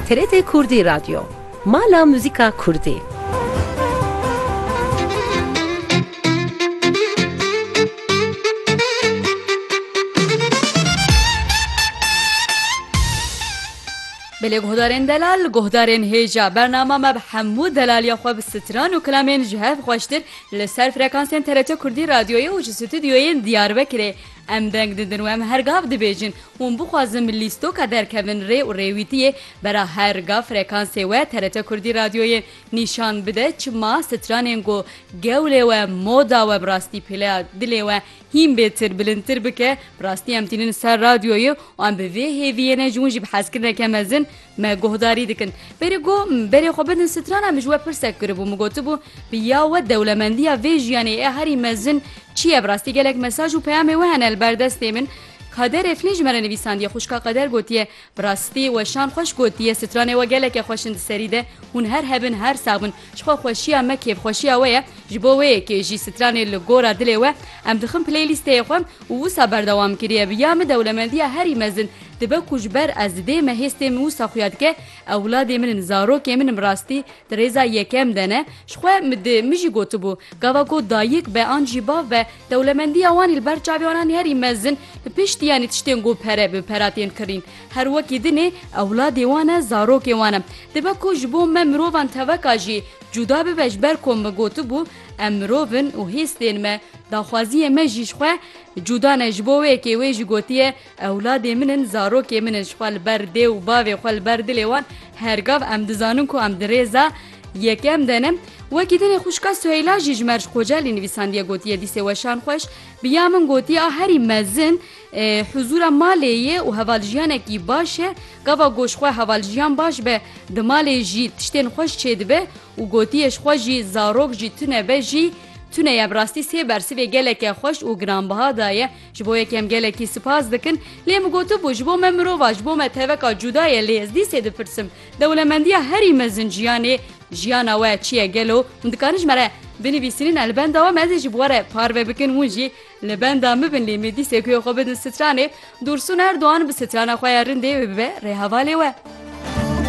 TRT Kurdî Radyo, mala muzîka kurdî. Belê guhdarên delal guhdarên hêja bernama me bi hemû delaliya xwe bi stran û kilamên ji hev xweştir li ser frekansên TRT Kurdî Radyoyê û ji stûdyoyên Diyarbekirê em deng didin û em her gav dibêjin Hûn bixwazin bi lîstoka derkevin rê û rêwîtiyê bera her ga frekansê we TRT Kurdî Radyoyê nîşan bide çima stranên ku gewlê we, moda we bi rastî pêleya dilê we hîn bêtir, bilindtir bike. Bi rastî em tînin ser radyoyê û em bi vê hêviyê ne ji wan jî bi hezkirineke mezin me guhdarî dikin. Berê ku berê xwe bidin strana min ji we pirsek kiribû min gotibû bi ya we dewlemendiya vê jiyanê ya herî mezin çi ye? Bi rastî gelek mesaj û peyamê we hene li ber destê min. Kader Efnî ji me re nivîsandiye, Xwişka Qeder gotiye, Bi rastî weşan xweş gotiye, stranê we gelekê xweş in di serî de, hûn her hebin her sax bin. Jixwe xweşiya me kêfxweşiya we ye, ji bo wê yekê jî stranê li gora dilê we em dixin playlîsteyê xwe û wisa berdewam kiriye. Bi ya min dewlemendiya herî mezin dibe ku ji ber ez didê me hêstê min wisa xuya dike, ewladê min in, zarokê min in bi rastî di rêza yekem de ne, jixwe min jî gotibû, gava ku dayik be an jî bav be, Dewlemendiya Wanî li ber çavê wanan herî mezin bi piştî yanî tiştên ku pere bi pera tên kirin. Her wekî din ê ewladê wan e, zarokê wan e. Dibe ku ji bo me mirovan teveka jî cuda bibe ji ber ku min gotibû em mirov in û hêz tên me, daxwaziyê me jî ji xwe cuda ne ji bo wê yekê wê jî gotiye, Ewladê min in, zarokê min in, ji xwe li ber dê û bavê xwe li ber dilê wan her gav em dizanin ku em di rêza yekem de ne. Wekî tenê xwişka Suheyla jî ji Merc Kocelî nivîsandiye gotiye, Dîsê weşan xweş bi ya min gotiye a herî mezin huzûra malê ye û hevaljiyanekî baş e. Gava got ji xwe hevaljiyan baş be di malê jî tiştên xweş çêdibe û gotiye ji xwe jî zarok jî tune be jî tune ye. Bi rastî sê bersivê geleke xweş û giranbiha daye. Ji bo yek em gelekî sipas dikin, lê min gotibû ji bo me mirov a, ji bo me teveka cuda ye lê ez dîsê dipirsim dewlemendiya herî mezin jiyanê jiyana we çi ye gelo hûn dikarin ji me re binivîsînin li benda wan ez ê ji bo re parve bikin hûn jî li benda min bin lê min dîsê guya xwe bidin stranê Dûrsûn Erdogan bi strana xwe ya rindê wê bibe rêhevalê we.